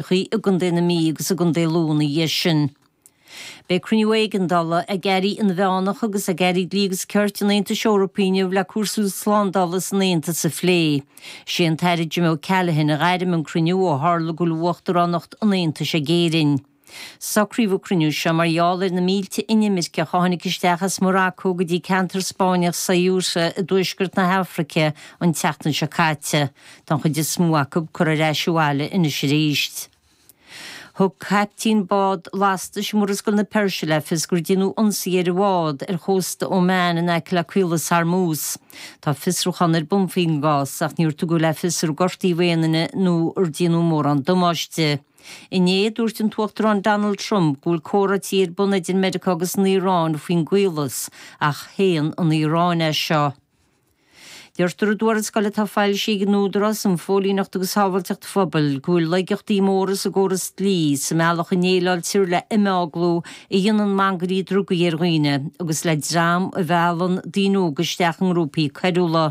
Chorcaí, i gContae na Mí agus i gContae Lú ina dhiaidh sin. Beidh cruinniú éigeandála ag airí inmheánach agus ag airí dlí agus cirt an Aontais Eorpaigh inniu le cúrsaí slándála san Aontas a phlé. Is é an tAire Jim O'Callaghan a ghairm an cruinniú ó tharla go bhfuil uachtaránacht an Aontais ag Éirinn. Socraíodh an cruinniú seo mar gheall ar na mílte inimirceach a tháinig isteach as Maracó go dtí ceantar Spáinneach Ceuta i dtuaisceart na hAfraice an tseachtain seo caite. don chuid is mó acu curtha ar ais abhaile anois arís. Thug caiptín bád lastais i Murascaill na Peirse le fios gur deineadh ionsaí ar a bhád ar chósta Oman in aice le Caolas Hormuz. Tá fiosrúchán ar bun faoin gcás ach níor tugadh le fios ar gortaíodh aon duine nó ar deineadh mórán damáiste. Inné, dúirt an tUachtarán Donald Trump go bhfuil comhráití ar bun idir Meiriceá agus an Iaráin faoin gCaolas ach shéan an Iaráin é seo. Deirtear i dtuarascáil atá foilsithe ag an Údarás um Phóilíneacht agus Shábháilteacht Phobail go bhfuil laigeachtaí móra i gcóras an dlí sa mbealach a ndéileáiltear le himeaglú a dhéanann mangairí drugaí ar dhaoine agus le dream a mheallann daoine óga isteach i ngrúpaí coiriúla.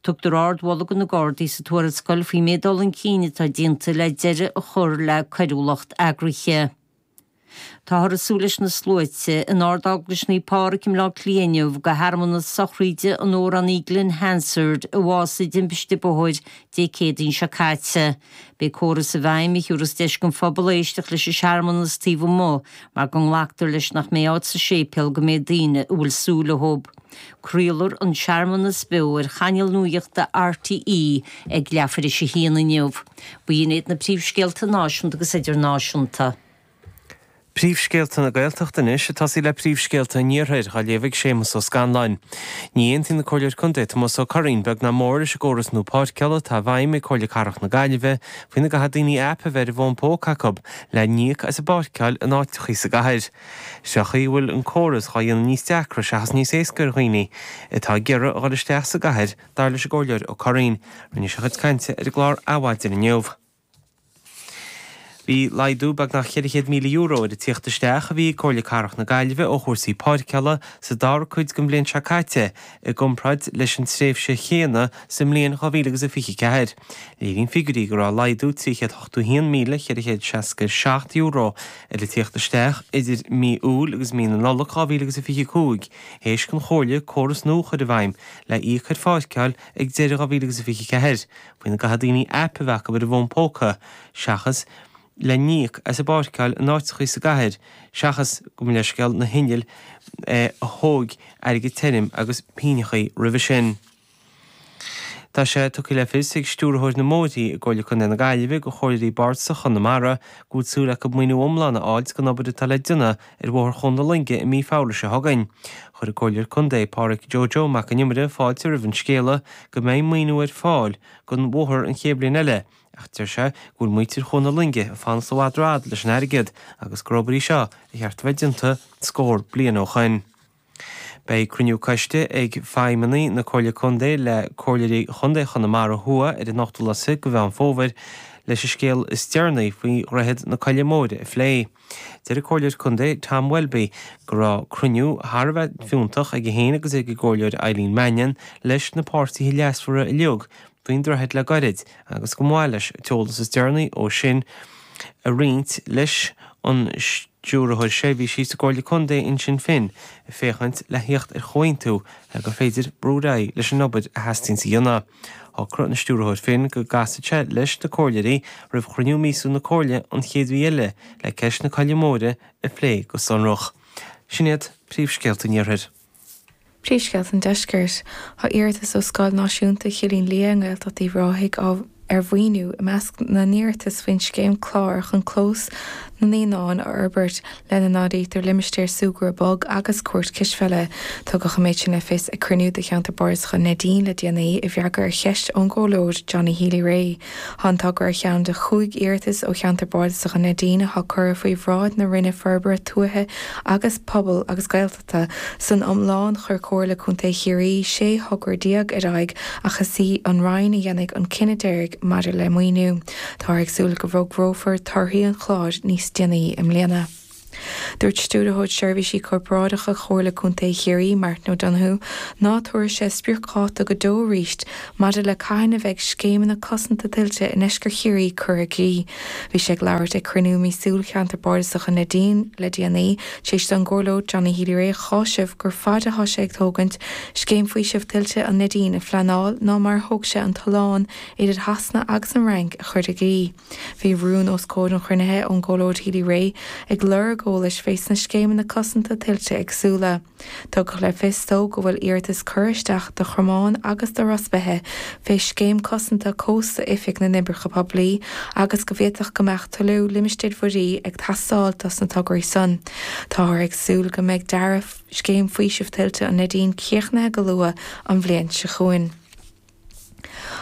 Tugtar ard-mholadh do na Gardaí sa tuarascáil faoin méid dul chun cinn atá déanta le deireadh a chur le coiriúlacht eagraithe. Táthar ag súil leis na sluaite in Ard-Eaglais Naomh Pádraig i mBleá Cliath inniu do shearmanas sochraíde in onóir do Glen Hansard a bhásaigh i dtimpiste bóthair Dé Céadaoin seo caite. Beidh córas i bhfeidhm a thiúras deis don phobal éisteacht leis an searmanas taobh amuigh mar go nglactar leis nach mbeidh áit sa séipéal don méid daoine a bhfuil súil Craolfar an searmanas beo ar chainéal nuachta RTÉ ag leath tar éis a haon inniu. B'in iad na príomhscéalta náisiúnta agus idirnáisiúnta. Príomhscéalta na Gaeltachta anois. Ag tosaí le príomhscéalta an Iarthair, á léamh ag Séamus Ó Scanláin. Ní aontaíonn an Comhairleoir Contae Tomás Ó Curraoín beag ná mór leis an gcóras nua páirceála atá i bhfeidhm ag Comhairle Cathrach na Gaillimhe faoina gcaithfidh daoine aip a bheith ar a bhfón póca acu lena n-íoc as a bpáirceáil in áiteachaí sa gcathair. Is é an chaoi a bhfuil an córas dhá dhéanamh níos deacra seachas níos éasca ar dhaoine atá ag iarraidh a dhul isteach sa gcathair, dar leis an gComhairleoir Ó Curraoín. Rinne sé a chuid cainte ar an gclár Adhmhaidin inniu. Bhí laghdú beagnach €400,000 ar an tíocht isteach a bhí ag Comhairle Cathrach na Gaillimhe ó chúrsaí páirceála sa dara cuid den bhliain seo caite i gcomparáid leis an tréimhse chéanna sa mbliain 2024. Léiríonn figiúirí go raibh laghdú €381,467 Ar an tíocht isteach idir mí Iúil agus mí na Nollag 2025, th'éis don Chomhairle córas nua a chur i bhfeidhm le íoc ar pháirceáil ag deireadh 2024, faoina gcaithfidh daoine aip a bheith acu ar a bhfón póca seachas lena n-íoc as a bpáirceáil in áiteachaí sa gcathair seachas go mb'éascaí leis na hinnill a thóig airgead tirim agus pingineachaí roimhe sin. Tá sé tugtha le fios ag Stiúrthóir na mBóithrí i gComhairle Contae na Gaillimhe do Chomhairleoirí Bardasach Chonamara go bhfuil súil acu maoiniú iomlán a fháilt don obair atá le déanamh ar Bhóthar Chuan na Loinge i mí Feabhra seo chugainn. Chuir an Comhairleoir Contae, Pádraig Joe Joe Mac an Iomaire fáilte roimh an scéala go mbeidh maoiniú ar fáil don bhóthar an chéad bhliain eile ach deir sé go bhfuil muintir Chuan na Loinge ag fanacht i bhfad rófhada leis an airgead agus gur obair í seo ar cheart a bheith déanta scór bliain ó shoin. Beidh cruinniú coiste ag feidhmeannaigh na Comhairle Contae le Comhairleoirí Chontae Chonamara Thuaidh ar an 8ú lá de Mheán Fómhair leis an scéal is deireanaí faoi Dhroichead na Coille Móire a phlé. Deir an Comhairleoir Contae Tom Welby go raibh cruinniú thar a bheith fiúntach aige féin agus ag an gComhairleoir Eileen Mannion leis na páirtithe leasmhara uilig faoin droichead le gairid agus go mba mhaith leis an t-eolas is deireanaí ó sin a roinnt leis an Stiúrthóir Seirbhísí sa gComhairle Contae Uinsinn Finn ag féachaint le thíocht ar chomhaontú le gur féidir brú ar aghaidh leis an obair a theastaíonn a dhéanamh. Shocraigh an Stiúrthóir Finn go gcasfadh sé leis na Comhairleoirí roimh chruinniú míosúil na Comhairle an chéad mhí eile le ceist na Coille Móire a phlé go sonrach. Sin iad príomhscéalta an Iarthair. Príomhscéalta an Deiscirt. Tá iarratas ó Scoil Náisiúnta Chillín Liath i nGaeltacht Uíbh Ráthaigh ar mhaoiniú i measc na n-iarratas faoin scéim CLÁR chun clós na naíonán a fhorbairt, lena n-áirítear limistéar súgradh bog agus cúirt cispheile. Tugadh an méid sin le fios ag cruinniú de Cheantar Bardasach an Neidín le déanaí. I bhfreagra ar cheist ón gComhairleoir Johnny Healy Rae, tá an togra ar cheann de chúig iarratas ó Cheantar Bardasach an Neidín atá curtha faoi bhráid na Roinne Forbartha Tuaithe agus Pobail agus San iomlán, chuir Comhairle Contae Chiarraí 16 thogra ar aghaidh ach is í an Roinn a dhéanfaidh an cinneadh deiridh maidir le maoiniú. Táthar ag súil go bhfógrófar torthaí an chláir níos déanaí i mbliana. Dúirt Stiúrthóir Seirbhísí Corparáideacha Chomhairle Contae Chiarraí, Martin O'Donoghue, ná tabharfaidh sé spriocdháta go deo arís maidir le cathain a bheidh scéimeanna cosanta tuilte i nDeisceart Chiarraí curtha i gcrích. Bhí sé ag labhairt ag cruinniú míosúil Cheantar Bardasach an Neidín le déanaí. Tar éis don gComhairleoir Johnny Healy-Rae a áiteamh gur faide a thá sé ag tógaint Scéim Faoisimh Tuilte an Neidín a phleanáil ná mar a thóg sé an tollán idir Shasana agus an Fhrainc a chur i gcrích. Bhí rún os comhair an chruinnithe ón gComhairleoir Healy-Rae ag lorg eolais fé sna scéimeanna cosanta tuilte éagsúla. Tugadh le fios dó go bhfuil iarratas curtha isteach do Chromán agus do Ros Beithe fé scéim cosanta cósta Oifig na nOibreacha Poiblí agus go bhféadfadh go mbeadh Tuilleadh limistéir mhuirí ag teastáil dos na tograí san. Táthar ag súil go mbeidh dearadh Scéim Faoisimh Tuilte an Neidín críochnaithe go luath an bhliain seo chugainn.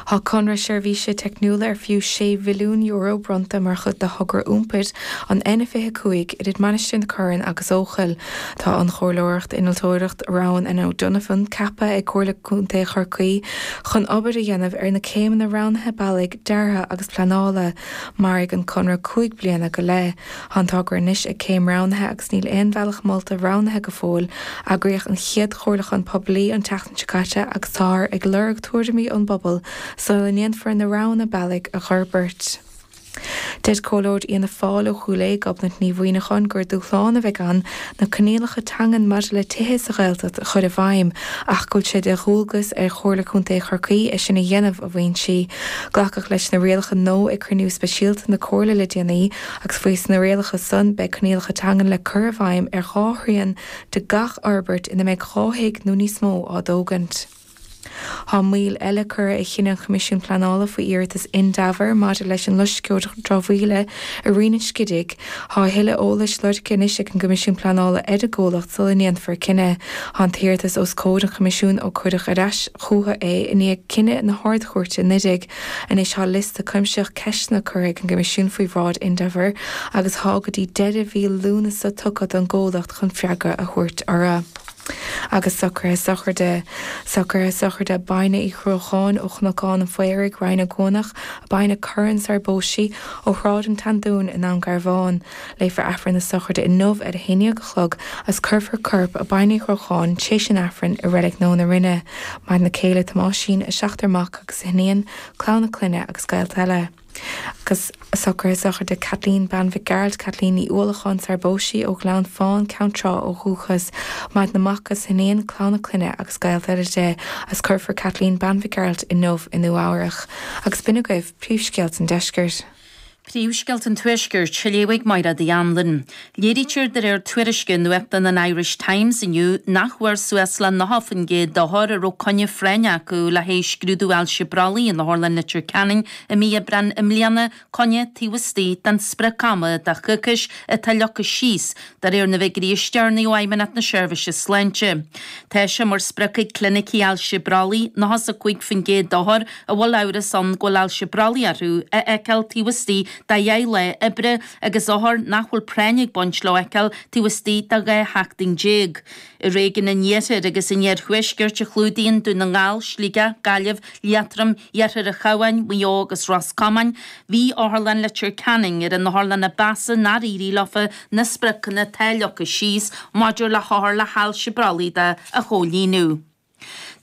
Tá conradh seirbhíse teicniúla ar fiú €6 mhilliún bronnta mar chuid de thogra iompair an N25 idir Mainistir na Corann agus Eochaill. Tá an Chomhairleoireacht Innealtóireacht Roughan and O'Donovan ceaptha ag Comhairle Contae Chorcaí chun obair a dhéanamh ar na céimeanna roghnaithe bealaigh, deartha agus pleanála. Mairfidh an conradh cúig bliana go leith. Tá an togra anois ag céim roghnaithe agus níl aon bhealach molta roghnaithe go fóill. Eagraíodh an chéad chomhairliúchán poiblí an tseachtain seo caite agus táthar ag lorg tuairimí ón bpobal sula ndéanfar na roghanna bealaigh a fhorbairt. Deir comhairleoir Fhianna Fáil ó Chúil Aodha, Gobnait Ní Mhuimhneacháin, gur dúshlán a bheidh ann Na coinníollacha teangan maidir le tithe sa Ghaeltacht a chur i bhfeidhm ach go bhfuil sé de dhualgas ar Chomhairle Contae Chorcaí é sin a dhéanamh, a mhaíonn sí. Glacadh leis na rialacha nua ag cruinniú speisialta na Comhairle le déanaí agus faois na rialacha san beidh coinníollacha teangan le cur i bhfeidhm ar dhá thrian de gach fhorbairt ina mbeidh dhá thigh nó níos mó á dtógaint. Tá moill eile curtha ar chinneadh an Choimisiúin Pleanála faoi iarratas Indaver maidir leis an loisceoir dramhaíola i Rinn an Scidígh. Tá a thuilleadh eolais lorgtha anois ag an gCoimisiún Pleanála ar an gcomhlacht sula ndéanfar cinneadh. Tá an t-iarratas os comhair an Choimisiúin ó cuireadh ar ais chucu é i ndiaidh cinneadh na hArd-Chúirte anuraidh. Anois tá liosta cuimsitheach ceisteanna curtha ag an gCoimisiún faoi bhráid Indaver agus tá go dtí deireadh mhí Lúnasa tugtha don gcomhlacht chun freagra a thabhairt orthu. agus socruithe sochraide, socruithe sochraide Baine Uí Dhruacháin ó Chnocán an Phaoraigh, Rinn Ó gCuanach, Baine Curran sarar phós sí ó Shráid an tSeandúin i nDún Garbhán. Léifear Aifreann na sochraide inniu ar a haon déag a chlog agus cuirfear corp Baine Uí Dhruacháin tar éis an Aifrinn i Reilig Nua na Rinne, maireann a céile Tomáisín, a seachtar mac agus a hiníon, clann a clainne agus gaolta eile. agus socruithe sochraide Kathleen Bean Mhic Gearailt, Kathleen Ní Uallacháin, sarar phós sí, ó Ghleann Fán, Ceann Trá ó dhúchas, Maireann a mac agus a hiníon, clann a clainne agus gaolta eile di, agus cuirfear Kathleen Bean Mhic Gearailt inniu i Nua Eabhrach. Agus b'in agaibh príomhscéalta an deiscirt. Príomhscéalta an tuaiscirt, a léifidh Maighréad Uí Anluain. Léirítear de réir tuairisce nuachtáin an Irish Times inniu nach bhfuair suas le 90% d'othair a raibh coinne phráinne acu le haghaidh scrúdú ailse brollaigh in Otharlann Leitir Ceanainn i mí Aibreáin i mbliana coinne taobh istigh den sprioc-ama de choicís atá leagtha síos de réir na bhfiguirí is deireanaí ó Fheidhmeannacht na Seirbhíse Sláinte. Tá sé mar sprioc ag Clinicí Ailse Brollaigh 95% d'othair a bhfuil amhras ann go bhfuil ailse brollaigh orthu a fheiceáil taobh istigh de dheich lá oibre, agus othair nach bhfuil práinn ag baint leo a fheiceáil taobh istigh de 12 sheachtain. I réigiún an Iarthair agus an Iarthuaiscirt a chlúdaíonn Dún na nGall, Sligeach, Gaillimh, Liatroim, Iarthar an Chabháin, Maigh Eo agus Ros Comáin, bhí Otharlann Leitir Ceanainn ar an otharlann ba mheasa nár éirigh leofa na spriocanna atá leagtha síos maidir le hothair le hailse brollaigh de a chomhlíonadh.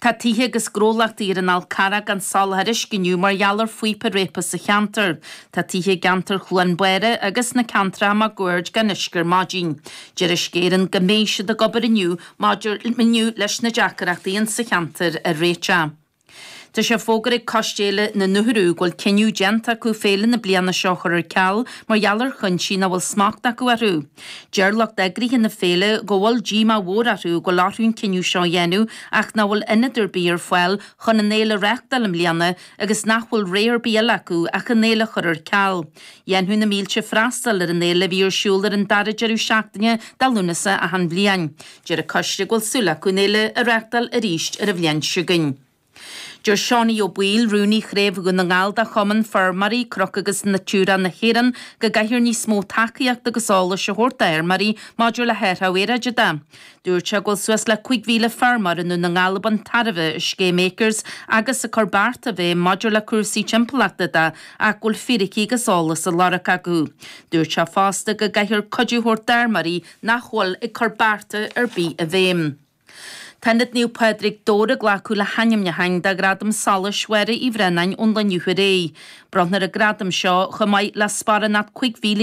Tá tithe agus gnólachtaí ar an Fhal Carrach gan soláthar uisce inniu mar gheall ar phíopa réabtha sa cheantar. Tá tithe i gceantar Chluain Báire agus sna ceantracha máguaird gan uisce ar maidin. Deir Uisce Éireann go mbeidh siad ag obair inniu maidir inniu leis na deacaireachtaí in sa cheantar a réiteach. Tá sé fógartha ag Coiste Fhéile na nUthrú go bhfuil cinneadh déanta acu féile na bliana seo a chur ar ceal mar gheall ar chuinsí nach bhfuil smacht acu orthu. Deir lucht eagraithe na féile go bhfuil díomá mhór orthu go bhfuil orthu an cinneadh seo a dhéanamh ach nach bhfuil ionad ar bith ar fáil chun an fhéile a reáchtáil i mbliana agus nach bhfuil rogha ar bith eile acu ach an fhéile a chur ar ceal. Dhéanfadh na mílte freastal ar an fhéile a bhí ar siúl ar an dara deireadh seachtaine de Lúnasa achan bhliain. Deir an coiste go bhfuil súil acu an fhéile a reáchtáil arís ar an bhliain seo chugainn. Deir Seánie Ó Baoill, Rúnaí Chraobh Dhún na nGall de Chumann Feirmeoirí Cnoc agus Natura na hÉireann, go gcaithfear níos mó tacaíocht agus eolais a thabhairt d'fheirmeoirí maidir le hathrú aeráide de. Dúirt sé go bhfuil suas le 5,000 feirmeoir i nDún na nGall ag baint tairbhe as scéim Acres agus ag cur bearta i bhfeidhm maidir le cúrsaí timpeallachta de ach go bhfuil fíricí agus eolas á lorg acu. Dúirt sé fosta go gcaithfear cuidiú a thabhairt d'fheirmeoirí nach bhfuil ag cur bearta ar bith i bhfeidhm. Tá Ionad Naomh Pádraig Dobhar ag glacadh le hainmniúcháin do Ghradam Solais Mháire Uí Bhraonáin ón lá inniu ar aghaidh. Bronntar an gradam seo chomh maith le sparánacht €5,000